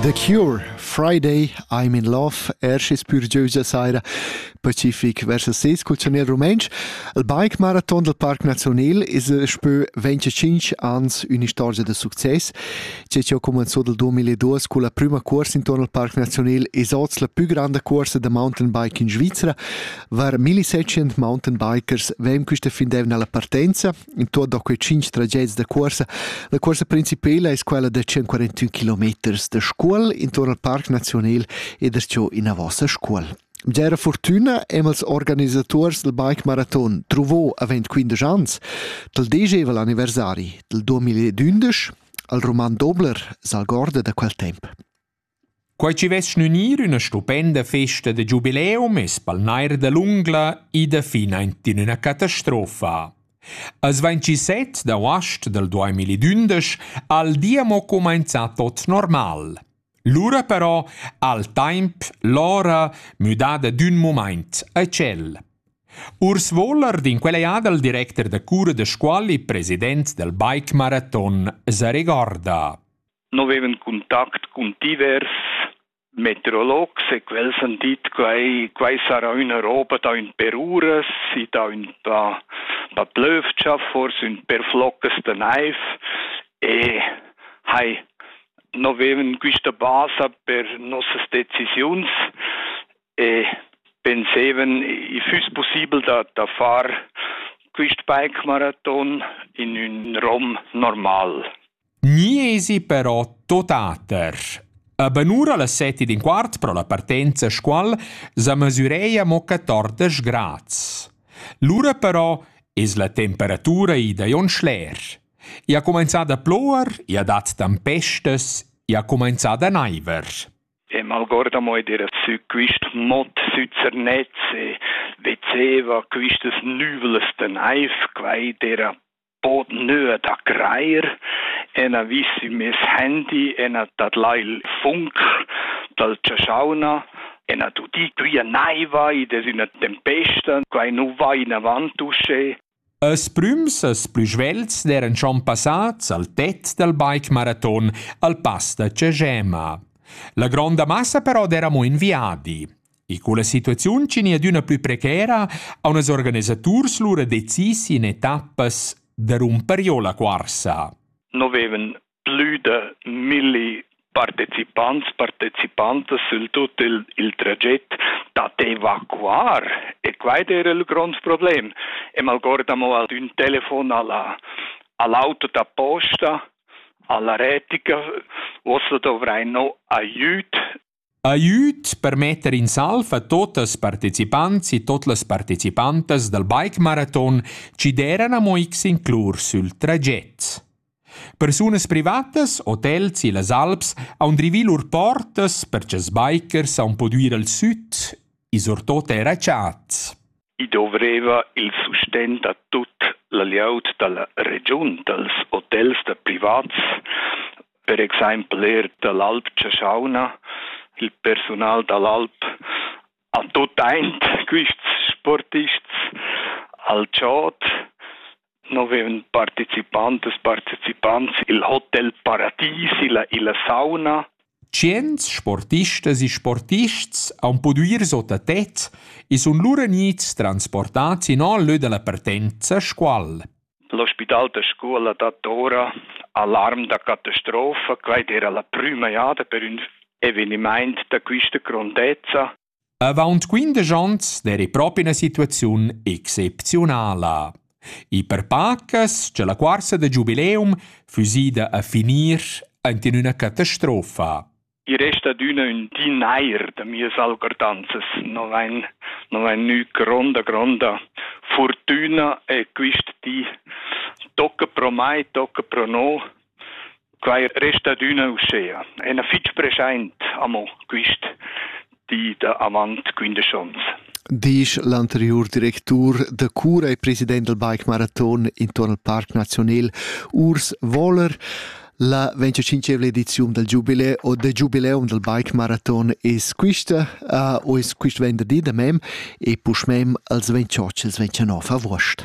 The Cure, Friday, I'm in Love, erscis pürgieusa saira pacific versus ses cultionier rumentsch. Il bike marathon del Parc Nazional es spö 25 ans ün'istorgia da success. Che ho comenzò del 2002 con la prüma cuorsa intorno al Parc Nazional es oz la pü granda cuorsa da mountainbike in Svizzera. Var 1700 mountainbikers vem quista fin d'eivna alla partenza. intuorn da quei tschinch trageds da cuorsa. La cuorsa principela es quella da 141 kilometers da scuol intorn al Parc Nazional ed es giò ina vossa scuol. Gera fortuna emals organisators del bike marathon truvò avent 15 ans del degeval anniversari del 2011 al Roman Dobler s'algorda da quel temp. Quai chi vess gnünir üna stupenda festa da giubileum es pel nair da l'ungla ida finaint in üna catastrofa. As 27 d'auast dal 2011 ha il di amo cumainzà tot normal. Lura però ha'l taimp l'ora müdada d'ün mumaint a tschel. Urs Wollert in quella jada il directer da cura da scuola e president dal bike maraton sa regorda. no vevan contact cun divers meteorologs e quels han dit quei, quei sarà üna roba da ün per uras e da, ün, da, da plövgia, forse ün per floccas de naiv e hai no vevan quista basa per nossas decisiuns e pensevan i füss possibel da, da far quist bike marathon in ün rom normal. Gni esi però tuotater. A banura las set ed in quart pro la partenza a Scuol sa mesüreia mo 14 grads. Lura però es la temperatura ida on schler. I ha cumenzà da ploer, i ha dat tempestas, i ha cumenzà da naiver. E malgorda mo era su quist mot süzernetz e vezeva quistas nüvles de naiv, quai era bod nöa da greir e na vissi mes handy e na tadlai il funk dal chaschauna e na tudì quia naiva id es üna tempesta, quai nu va inavant uschè. Els prüms els plü svelts d'eran schon passats al tet dal bike maraton al pass da Cegema. La gronda massa però d'eramo in viadi. E con la situaziun che ni adüna plü precera ha unas organisaturs lura decis in etappas da rumper giò la cuorsa. No vevan plü da milli partecipants, partecipantas sül tut il, il traget da evacuar e quaid era il grond problem. E malgorda mo ad ün telefon alla, all'auto da posta, alla retica, uossa dovrai no aiüt Aiüt per metter in salv a tuot ils partecipants e tuot las partecipantas dal bike maraton chi d'eiran amo x inclus sül traget. Persunas privatas, hotels e las alps haun drivì lur portas per cha'ls bikers haun pudü ir al süt e surtuot eir a chats. I dovreva il sustegn da tut la glieud da la regiun, dals hotels da privats, per exempel er da l'Alp Chaschauna, il persunal da l'Alp, a tut aint quists sportists al chod no vevan participantas partecipants il Hotel Paradis, illa, illa sauna. Tschients sportistas e sportists han pudü ir sot a tet e sun lura gnits transportats in al lö da la partenza Scuol. L'ospital da scuola dat ora alarm da catastrofa, quai era la prüma jada per ün evenimaint da quista grondezza. Avaunt quindesch ons d'eira propi üna situaziun excepziunala. I per pacas cha la cuorsa da giubileum füss ida a finir ant in üna catastrofa. I resta adüna ün di nair da mias algordanzas, no vain, no vain gnü gronda, gronda furtüna e quist di tocca pro mai, tocca pro no Quai resta adüna uschea. E na fich preschaint amo quist di da avant quindesch ons. Disch l'anteriur directur da cura e president del Bike Marathon intuorn al Parc Nazionel, Urs Wohler, La 25 ediziun del Giubile o de Giubileum del Bike Marathon es quista, uh, o es quist venderdi da mem e puschmem als 28 als 29 avuost.